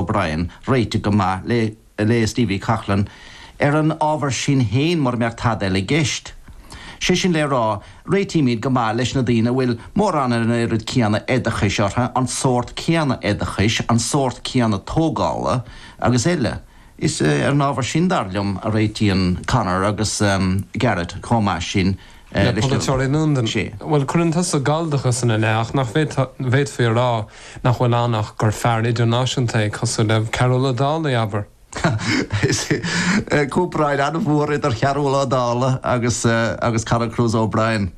O'Brien, réiteach go maith le léas D. V. Coughlan ar an ábhar sin féin mura mbeadh tada eile i gceist. Sé sin le rá, réitímid go maith leis na daoine a bhfuil, mórán ar an oiread céanna oideachais orthu, an sórt céanna oideachais, an sórt céanna tógála agus eile. Is ar an ábhar sin, dar liom, a réitíonn Conor agus Garret chomh maith sin. le polaiteoirí i Londain. Bhuel, cuireann tusa galldachas ina leith, ach nach bhféadfaí a rá nach bhfuil ann ach gur fear idirnáisiúnta é, cosúil le Cearbhall Ó Dálaigh, abair. Is ea, comparáid an-mhór idir Chearbhall Ó Dálaigh agus Conor Cruise O'Brien.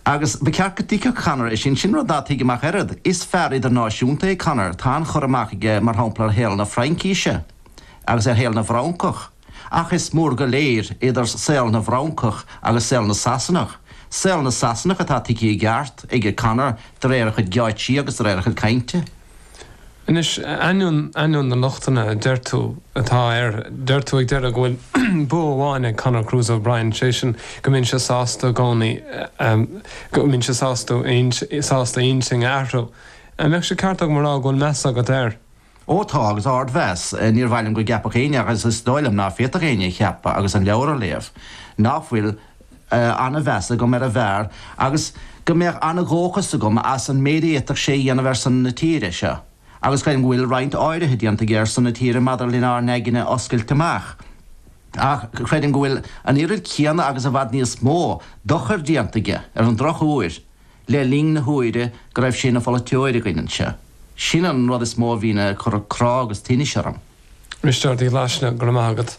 Agus ba cheart go dtuigfeadh Conor é sin. Sin rud ná tuigim ach oiread. Is fear idirnáisiúnta é Conor. Tá an-chur amach aige, mar shampla, ar shaol na Fraincise agus ar shaol na bhFrancach. Ach is mór go léir idir saol na bhFrancach agus saol na Sasanach, saol na Sasanach atá tuigthe i gceart ag Conor de réir a chuid geáitsí agus de réir a chuid cainte. Anois, ainneoin, ainneoin na lochtanna a deir tú atá air, deir tú ag deireadh go bhfuil bua amháin ag Conor Cruise O'Brien, sé sin go mbíonn sé sásta i gcónaí, go mbíonn sé sásta, sásta intinn a athrú. An mbeadh sé ceart agam a rá go bhfuil meas agat air? Ó tá, agus ardmheas, níor mhaith liom go gceapfadh éinne, agus is dóigh liom ná féadfadh éinne a cheapadh agus an leabhar a léamh, ná fuil an-mheas agam ar an bhfear agus go mbeadh an-dhóchas agam as an méid a fhéadfadh sé a dhéanamh ar son na tíre seo, agus creidim go bhfuil roinnt áirithe déanta aige ar son na tíre maidir lenár n-aigne a oscailt amach. Ach creidim go bhfuil an oiread céanna agus i bhfad níos mó dochair déanta aige, ar an drochuair, le linn na huaire go raibh sé ina pholaiteoir againn anseo. Sin an rud is mó a bhíonn ag cur crá agus tinnis orm. A Risteáird Uí Ghlaisne, go raibh maith agat.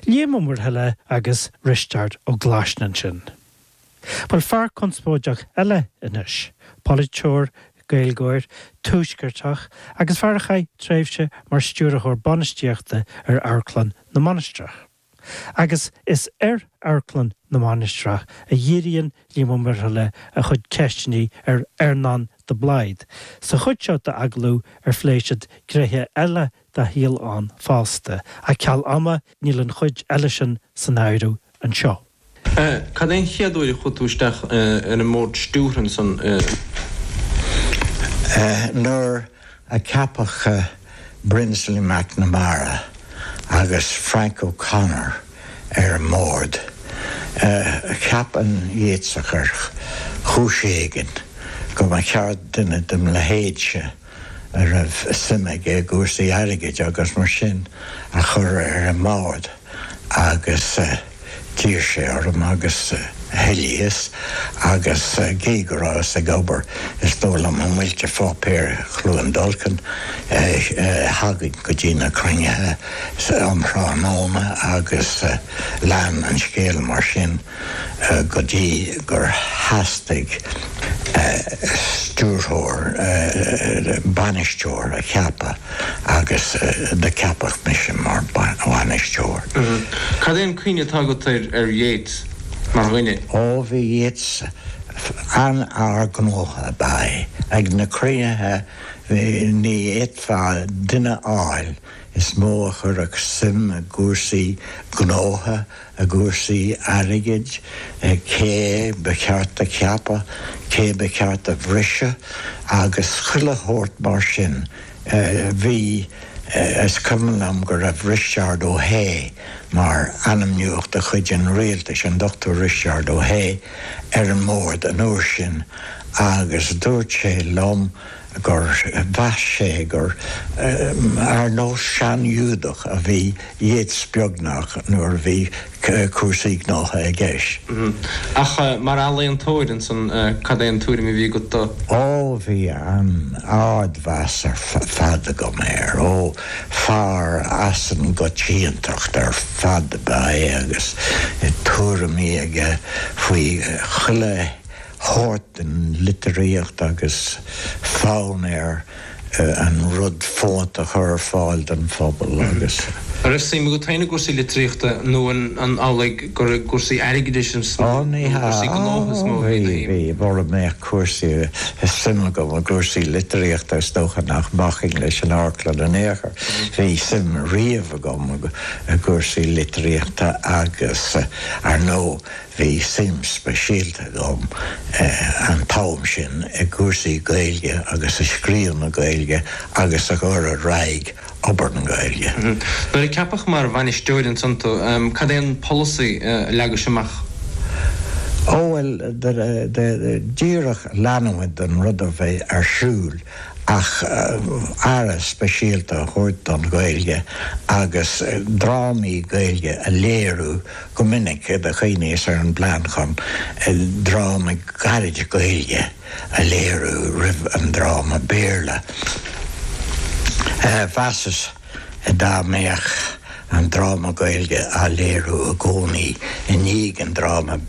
Liam Ó Muirthile agus Risteárd Ó Glaisne ansin. Bhuel, fear conspóideach eile anois, polaiteoir, Gaeilgeoir, tuaisceartach agus fear a chaith tréimhse mar stiúrthóir bainistíochta ar Amharclann na Mainistreach. Agus is ar Amharclann na Mainistreach a dhíríonn Liam Ó Muirthile a chuid ceisteanna ar Earnán de Blaghd sa chuid seo d'agallamh ar phlé siad gnéithe eile dá shaol ann fosta, ach ceal ama níl an chuid eile sin san áireamh anseo. A, Cad é an chéad uair a chuaigh tú isteach ar an mBord Stiúrtha ansan? A, Nuair a ceapadh Brinsley MacNamara agus Frank O'Connor ar an mBord, cheap an Yeatsach ar chúis éigin go mba cheart duine dem leithéidse, a raibh suim aige i gcúrsaí airgid agus mar sin, a chur ar an mbord agus d'iarr sé orm agus thoilíos agus gé go rabhas ag obair is dóigh liom i Muilte Pháipéir Chluain Dolcáin thagainn go dtí na cruinnithe um thráthnóna agus lean an scéal mar sin. go dtí gur theastaigh stiúrthóir, bainisteoir a cheapadh agus do ceapadh mise mar bhainisteoir. Cad é an cuimhne atá agat ar Yeats mar dhuine? Ó, bhí Yeats an-fhear gnótha ab ea é. Ag na cruinnithe ní fhéadfá duine a fháil is mó a chuirfeadh suim i gcúrsaí gnótha i gcúrsaí airgid, cé ba cheart do cheapadh, cé ba cheart do bhriseadh agus chuile shórt mar sin. Bhí, is cuimhin liom go raibh Risteárd Ó hAodha mar ainmnitheach de chuid an rialtais, an Dr. Risteárd Ó hAodha, ar an mbord an uair sin agus dúirt sé liom, gur mheas sé gur ar nós sean-Ghiúdach a bhí Yeats beagnach nuair a bhí cúrsaí gnótha i gceist. Ach mar ealaíontóir, ansan, cad é an tuairim a bhí agat de? Ó, bhí an-ardmheas ar fad agam air. Ó, fear as an gcoitiantacht ar fad ab ea é agus tuairimí aige faoi chuile shórt den litríocht agus fonn air an rud fónta a chur ar fáil don phobal agus. An raibh suim agat féin i gcúrsaí litríochta nó an amhlaidh gur i gcúrsaí airgeadais is mó nó i gcúrsaí gnótha is mó a bhí do shuim? Bhí, mura mbeadh cúrsaí, suim agam i gcúrsaí litríochta is dócha nach mbacfainn leis an amharclann in aon chor. Bhí suim riamh agam i gcúrsaí litríochta agus, ar ndóigh, Bhí suim speisialta agam an t-am sin i gcúrsaí Gaeilge agus i scríobh na Gaeilge agus i gcur ar aghaidh obair na Gaeilge. Nuair a ceapadh mar bhainisteoir ansan tú, cad é an polasaí a leagais amach? Ó bhuel, díreach leanúint den rud a bhí ar siúl ach aire speisialta a thabhairt don Ghaeilge agus drámaí Gaeilge a léiriú, go minic do chuimhníos ar an bplean chun dráma gairid Gaeilge a léiriú roimh an dráma Béarla. Mheasas dá mbeadh an dráma Gaeilge á léiriú i gcónaí i ndiaidh an dráma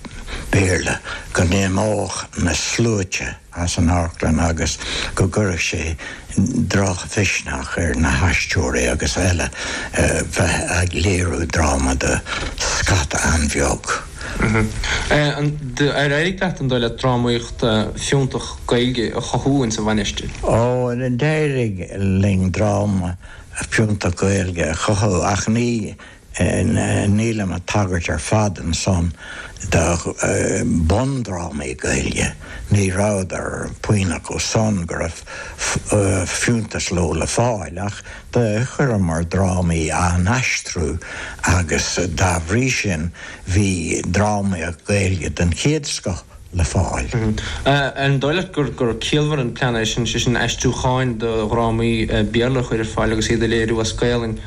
Béarla go n-imeodh na sluaite, as an amharclann agus go gcuirfeadh sé drochmhisneach ar na haisteoirí agus eile bheith ag léiriú dráma do scata an-bheag. Ar éirigh leat an dóigh leat drámaíocht fiúntach Gaeilge a chothú ins an Mhainistir? Ó, d'éirigh linn drámaí fiúntacha Gaeilge a chothú ach ní Nílim ag tagairt ar fad ansan do bhundrámaí Gaeilge, ní raibh puinn acu san go raibh fiúntas leo le fáil, ach do chuireamar drámaí dá n-aistriú agus dá bhrí sin bhí drámaíocht Ghaeilge den chéad scoth. le fáil. Ar dhóigh leat gur ciallmhar an plean é sin, sé sin aistriúcháin de dhrámaí Béarla a chur ar fáil agus iad a léiriú as Gaelainn.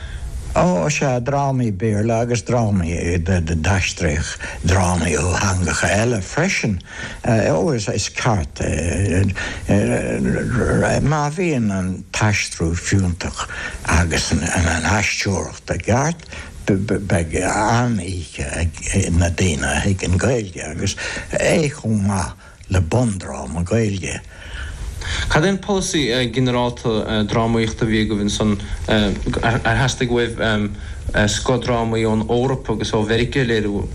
Ó, sea, drámaí Béarla agus drámaí, d'aistríodh drámaí ó theangacha eile freisin. Ó, is ceart é, má bhíonn an t-aistriú fiúntach agus an aisteoireacht, Ba cheart go mbeadh an-oíche ag na daoine a thuigeann Gaeilge, agus é chomh maith le bundráma Gaeilge. Cad é an polasaí ginearálta drámaíochta a bhí agaibh ansin? Ar theastaigh uaibh scothdrámaí ón Eoraip agus ó Mheiriceá a léiriú?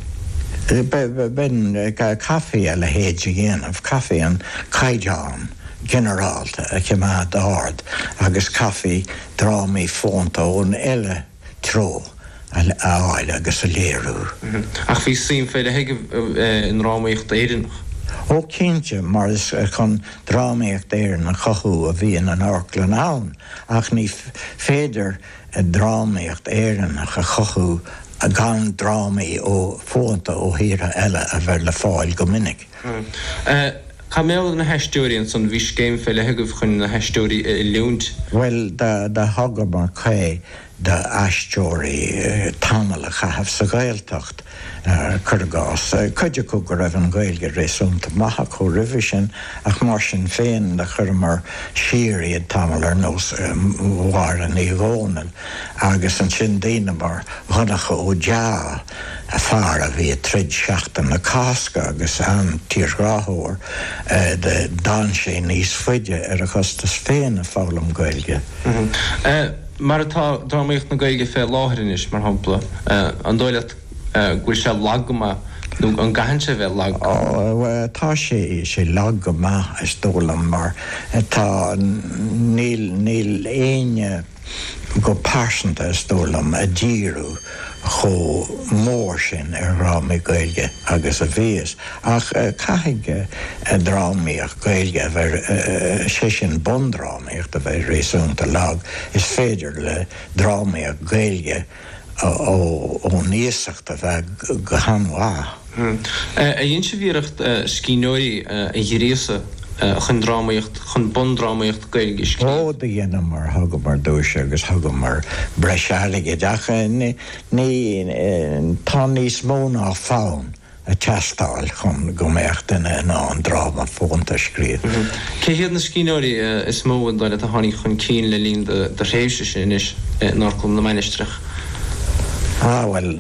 B'in, chaithfí a leithéid a dhéanamh, chaithfí an caighdeán ginearálta a choimeád ard agus chaithfí. drámaí fónta ón uile threo a fháil agus a léiriú. Ach bhí suim fé leith agaibh i ndrámaíocht Éireannach. Ó cinnte, mar is chun drámaíocht Éireann a chothú a bhíonn an amharclann ann, ach ní féidir drámaíocht Éireannach a chothú gan drámaí fónta ó thíortha eile a bheith le fáil go minic. Cad mar gheall ar na haisteoirí ansan? Bhí scéim fé leith agaibh chun na haisteoirí a oiliúint. Bhuel, do thugamar caoi do aisteoirí tamall a chaitheamh sa Ghaeltacht, cur i gcás. Cuid acu go raibh an Ghaeilge réasúnta maith acu roimhe sin, ach mar sin féin do chuireamar siar iad tamall ar nós Mháire Ní Dhomhnaill, agus ansin daoine mar Dhonncha Ó Dea, fear a bhí ag troid Seachtain na Cásca agus an-tírghráthóir, do fhan sé níos faide ar a chostas féin ag foghlaim Gaeilge. Mar atá drámaíocht na Gaeilge fé láthair anois, mar shampla, an dóigh leat go bhfuil sé lag go maith nó an gcaitheann sé bheith lag? Ó, tá sé, sé lag go maith, is dóigh liom, mar tá, níl, níl éinne. go pearsanta, is dóigh liom, a díriú chomh mór sin ar dhrámaí Gaeilge agus a bhíos. Ach caithfidh drámaíocht Gaeilge a bheith, sé sin bundrámaíocht, a bheith réasúnta lag. Is féidir le drámaíocht Ghaeilge. ón iasacht a bheith go han-mhaith. Á, dheineas-sa iarracht scríbhneoirí a ghríosadh chun drámaíocht, chun bundrámaíocht Gaeilge a scríobh. Do dheineamar mar thugamar duais agus thugamar breis airgid ach ní, tá níos mó ná fonn. ag teastáil chun go mbeadh duine in ann dráma fónta a scríobh. Cé hiad na scríbhneoirí is mó is dóigh leat a tháinig chun cinn le linn do thréimhse-se anois in Amharclann na Mainistreach? Á, bhuel,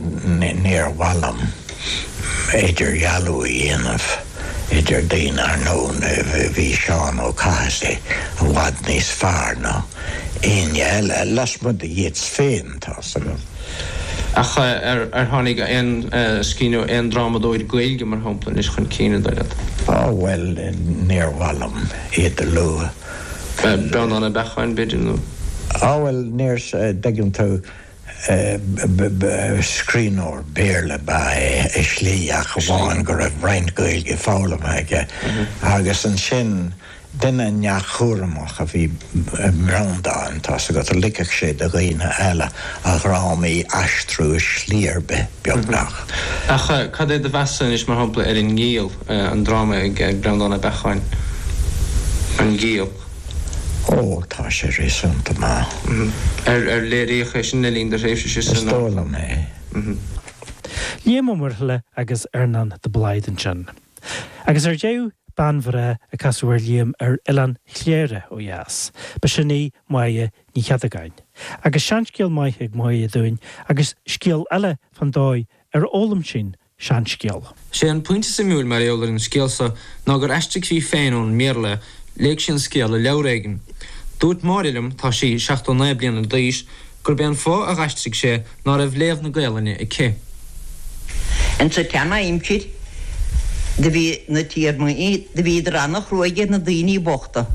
níor mhaith liom idirdhealú a dhéanamh idir daoine, ar ndóigh, bhí Seán Ó Cathasaigh i bhfad níos fearr ná éinne eile, lasmuigh de Yeats féin, tá's agam. Ach ar tháinig aon scríbhneoir, aon drámadóir Gaeilge, mar shampla, anois chun cinn, is dóigh leat? Á, bhuel, níor mhaith liom iad a lua. Breandán Ó Beacháin, b'fhéidir, nó? Á, bhuel, níor, dtuigeann tú, scríbhneoir Béarla ba ea é, i slí, ach amháin go raibh roinnt Gaeilge foghlamtha aige. Agus ansin. Duine neamhchúramach a bhí i mBreandán, tá's agat, ligfeadh sé do dhaoine eile a dhrámaí a aistriú i slí ar bith, beagnach. Ach cad é do mheas anois, mar shampla, ar An nGiall, an dráma ag Breandán Ó Beacháin, An Giall? Ó, tá sé réasúnta maith. Ar léiríodh é sin le linn do thréimhse-se san Amharclann? Is dóigh liom é. Liam Ó Muirthile agus Earnán de Blaghd ansin. Agus ar deireadh, bean bhreá a casadh ar Liam ar Oileán Chléire ó dheas, ba sin í Máire Ní Chéadagáin. Agus seanscéal maith ag Máire dúinn, agus scéal eile fán dóigh ar fhoghlaim sí an seanscéal. Sé an pointe suimiúil mar gheall ar an scéal seo ná gur aistrigh sí féin é ón mBéarla, léigh sí an scéal i leabhar éigin. Dúirt Máire liom, tá sí 79 bliana d'aois, gurb é an fáth a dh'aistrigh sí é ná raibh léamh na Gaelainne aici. Insa tseana-aimsir do bhí na tiarnaí do bhíodar ana-chrua ar na daoine bochta,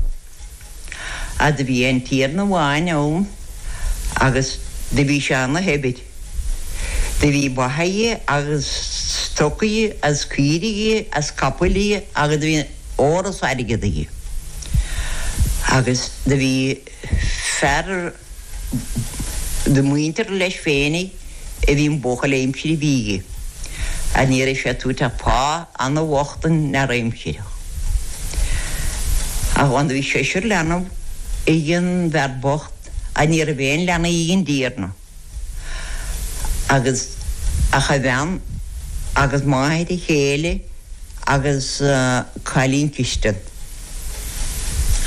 agus do bhí aon tiarna amháin ann agus do bhí sé ana-shaibhir. Do bhí ba aige agus stoc aige agus caoirigh agus capaill agus do bhí ór is airgead aige. Agus do bhí. Fear de mhuintir leis féinig a bhí ina bhuachaill aimsire aige, ach ní raibh sé ag tabhairt ach pá ana-bhocht don fhear aimsire. Ach ann do bhí seisear leanbh ag an bhfear bocht, ach ní raibh aon leanbh ag an dtiarna. agus ach a bhean agus máthair a chéile agus cailín cistine.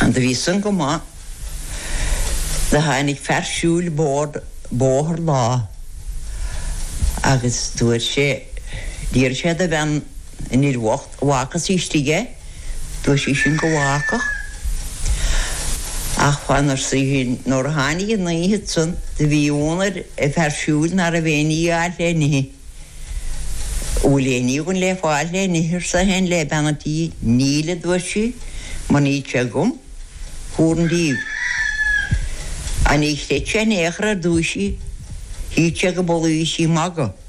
An do bhí san go maith, do tháinig fear siúil bocht bóthar lá agus dúirt sé, d'iarr sé de bhean, An fhir bhocht an bhfágfadh sí istigh é, dúirt sí sin go bhfágfadh. Ach fan, arsa í sin, nuair a tháinig an oíche san do bhí ionadh ar an bhfear siúil ná raibh aon ní á fháil le n-ithe. An bhfuil aon ní againn le fáil le n-ithe, arsa é sin le bean an tí. Níl, a dúirt sí, mar níl sé agam. Fuar an díobh. Ní chreid sé in aon chor ar dúisigh, shíl sé gurb amhlaidh a bhí sí ag magadh.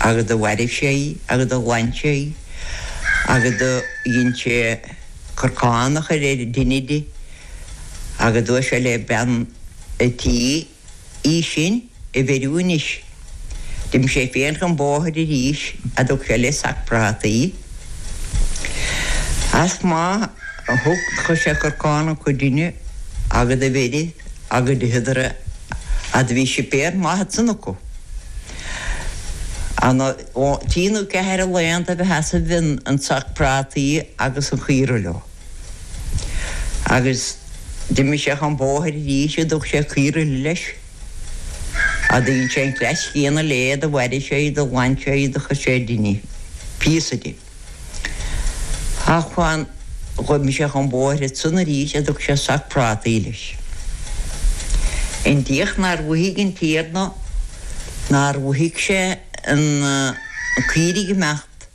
agus do mhairbh sé í agus do ghlan sé í agus do dhein sé corcán a chur ar an dtine di agus dúirt sé le bean a' tí í sin a bheiriú anois. D'imigh sé féin chun bóthair arís agus thug sé leis sac prátaí. Is má thug, chuir sé corcán acu ar an dtine agus do bheirigh agus d'itheadar é agus do bhí suipéar maith ansan acu. An trí nó ceathair a laethanta ab ea sheasaimh an sac prátaí agus an chaora leo. Agus d'imigh sé chun bóthair arís is thug sé caora eile leis. Is do dhein sé an cleas céanna léi do mhairbh sé í do ghlan sé í do chuir sé ar an dtine píosa di. Ach má dhein d'imigh sé chun bóthair ansan arís is thug sé sac prátaí leis. I ndiaidh nár mhothaigh an Tiarna, nár mhothaigh sé na caoirigh ag imeacht,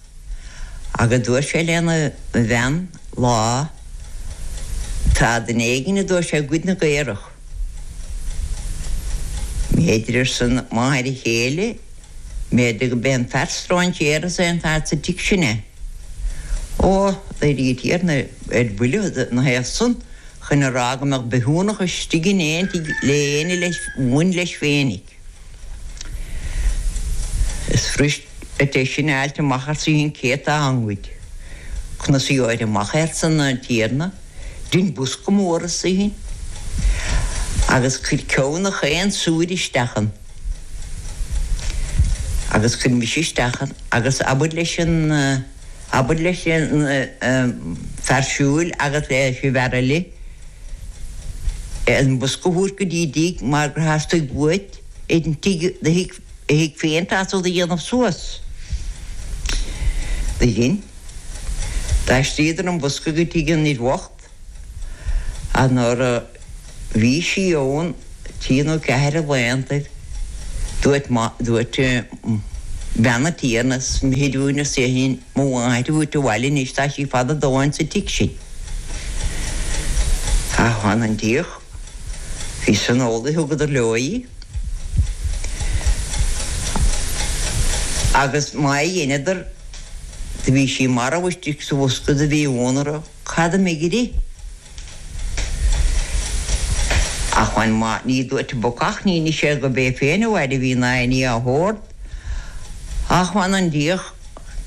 agus dúirt sé lena bhean lá, Tá duine éigin, a dúirt sé, ag goid na gcaorach. B'fhéidir, arsa máthair a chéile, b'fhéidir gurb é an fear strainséartha san an fear sa tigh sin é. Ó, d'éirigh an tiarna ar buile ina thaobh san chun é a rá go mbeadh bithiúnach istigh in aon tigh le haon duine a bhain leis féinig. Is fuiris é sin a fháilt amach arsa í sin cé atá á ngoid. Conas a gheobhair amach arsa an tiarna dein bosca mór arsa í sin agus cuir ceann de gach aon sórt isteach ann agus cuir mise isteach ann agus abair leis an Abair leis an bhfear siúil agus leis an bhfear eile an bosca a thabhairt go dtí a dtigh mar gur theastaigh uait an tigh do thigh féin feasta do dhéanamh suas. B'shin. D'aistríodar an bosca go tigh an fhir bhoicht. Ach nuair a bhí sí ann, trí nó ceathair a laethanta, dúirt bean an Tiarna, is mithid dúinn, arsa í sin, mo mháthair a thabhairt abhaile anois, tá sí fada a dóthain sa tigh sin. Ach mh'anam 'on diach, bhí san ól a thugadar leo í, agus má dheineadar, do bhí sí marbh istigh sa bhosca do bhí ionadh orthu. Cad a imigh uirthi? Ach mh'anam má bhí ní duairt an bacach níor nis sé gurbh é féin a mhairbh í ná aon ní dá shórt. Ach mh'anam 'on diach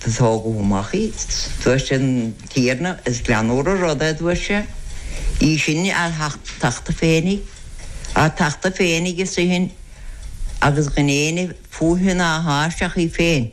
do tógadh amach í. Duairt an Tiarna, is greannúr an rud é, aduairt sé. Í sin á tachtadh féinig. Á tachtadh féinig arsa í sin agus gan éinne fúithi ná thairsti ach í féin.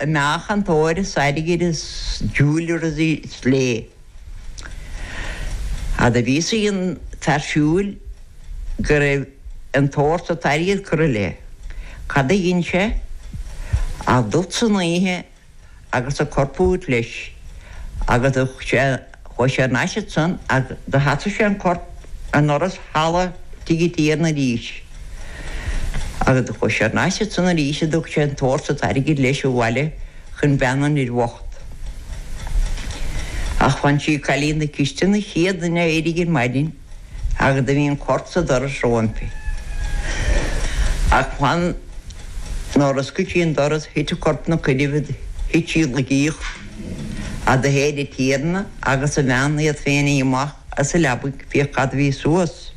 a meáchan óir is airgid is jewellers is léi, ach do bhí a fhios ag an bhfear siúil go raibh an t-ór is an t-airgead curtha léi. Cad a dhein sé ach dul san oíche agus an corp a thabhairt leis agus thug sé Chuaigh sé thar n-ais ansan agus do sheasaigh sé an corp i ndoras halla tigh an Tiarna arís agus do chuaigh sé thar n-ais ansan arís, do thug sé an t-ór is an t-airgead leis abhaile chun bean an fhir bhocht. Ach mh'anam sí cailín na cistine an chéad duine a éirigh ar maidin. Ach do bhí an corp sa doras roimpi. Ach mh'anam nuair a oscail sí an doras thit an corp ina coinnibh do thit sí i laige ach do théid an Tiarna agus a bhean iad féinig amach as a leabaidh féachaint cad a bhí suas.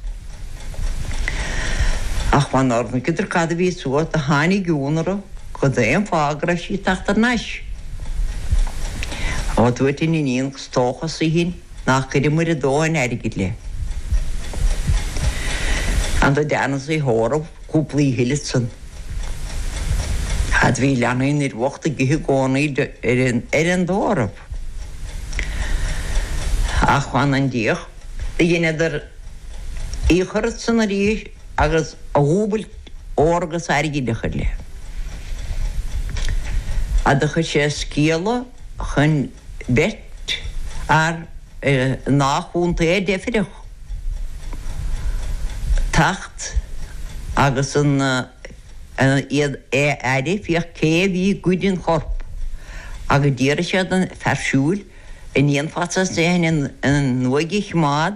Ach mh'anam nuair a chonaiceadar cad a bhí suas do tháinig ionadh orthu cad ina thaobh go raibh sí ag teacht ar n-ais. Ó, a dúirt an iníon, is dócha, arsa í sin, Nár chuireamair a dóthain airgid léi. Ach do deineadh í a thórramh cúpla oíche eile ansan. Ach do bhí leanaí an fhir bhocht ag ithe i gcónaí ar an dtórramh. Ach mh'anam 'on diach do dheineadar í a chur ansan arís agus a dhúbailt ór agus airgid a chur léi. Ach do chuir sé scéala chun. beirt fhear ina chontae a deifreadh teacht agus iad ar a fiach cé a bhí ag goid an choirp agus d'fhiafraigh sé den fear siúil, 'An ndéanfadh sé san an uaigh a choimeád?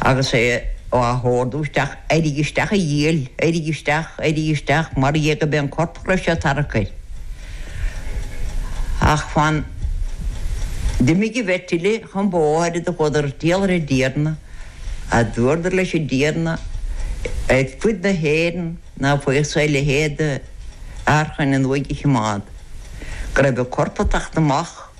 agus é á ordú isteach, éirigh isteach a dhiabhail, éirigh isteach, éirigh isteach, mar dhea gurbh é an corp go raibh sé ag tarrac air. Ach fan d'imigh an bheirt eile chun bóthair is do chuadar ag triall ar an dTiarna, is dúradar leis an dTiarna, ar fud na hÉireann ná faigheadh sé a leithéid d'fhear chun an uaigh a choimeád, go raibh an corp ag teacht amach.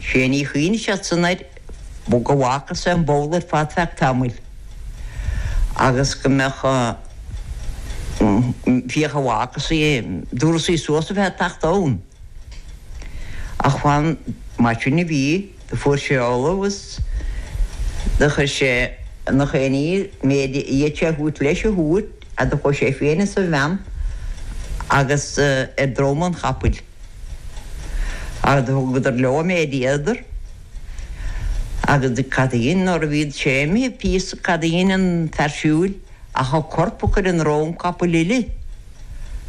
Sé ní a chuimhnigh sé san air go bhfágfadh sé an ball ar fad feadh tamaill agus go mbeadh féach an bhfágfadh sí, an dtabharfadh sí suas a bheith ag teacht ann. Ach fan mar sin a bhí, do fuair sé ullamh agus do chuir sé ina chaoiní an méid a fhéad sé a thabhairt leis a thabhairt agus do chuaigh sé féin is a bhean agus ar drom an chapaill. Do thugadar leo an méid a fhéadadar. Agus cad a dhein, nuair a bhí sé imithe píosa, cad a dhein an fear siúil ach an corp a chur i ndrom capaill eile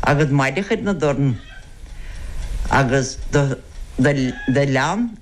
agus maide a chur ina dorn agus do lean.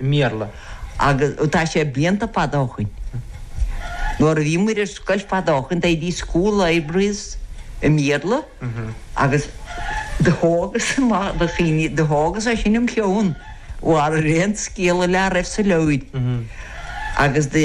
i mBéarla agus tá sé blianta fada ó shin nuair a bhí muid ar scoil fada ó shin bhí school libraries i mBéarla agus do thógas amach do chinn do thógas é sin im cheann thar aon scéal eile dá raibh sa leabhar agus de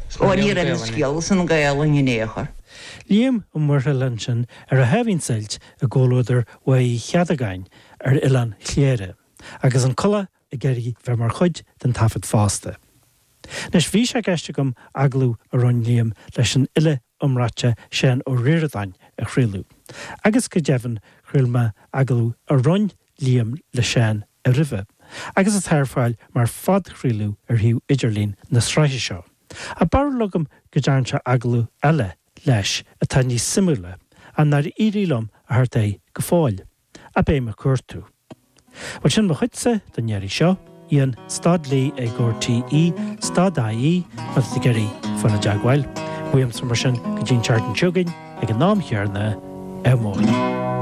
Ó, ní raibh an scéal san Gaelainn in ao' chor. Liam Ó Muirthile ansin ar a sháimhín suilt i gcomhluadar Mhaigh Uí Chéadagáin ar Oileán Chléire, agus an coileach ag iarraidh bheith mar chuid den taifead fosta. Anois, bhí sé i gceist agam agallamh a rinn Liam leis an fhile iomráite Seán Ó Ríordáin a chraoladh, agus go deimhin chraol mé agallamh a rinn Liam le Seán roimhe, agus atá ar fáil mar phodchraoladh ar shuíomh idirlín na sraithe seo. Tá barúil agam go dtearn sé agallamh eile leis atá níos suimiúla, ach nár éirigh liom a theacht air go fóill. Ach beidh mé ag cuartú. Bhuel, sin mo chuidse don iarraidh seo. Ian, stad Lee ag RTÉ, stad ie, má tá tú ag iarraidh a bheith i dteagmháil. Uaimse mar sin go dtí an tseachtain seo chugainn, ag an am chéarna, ádh mór.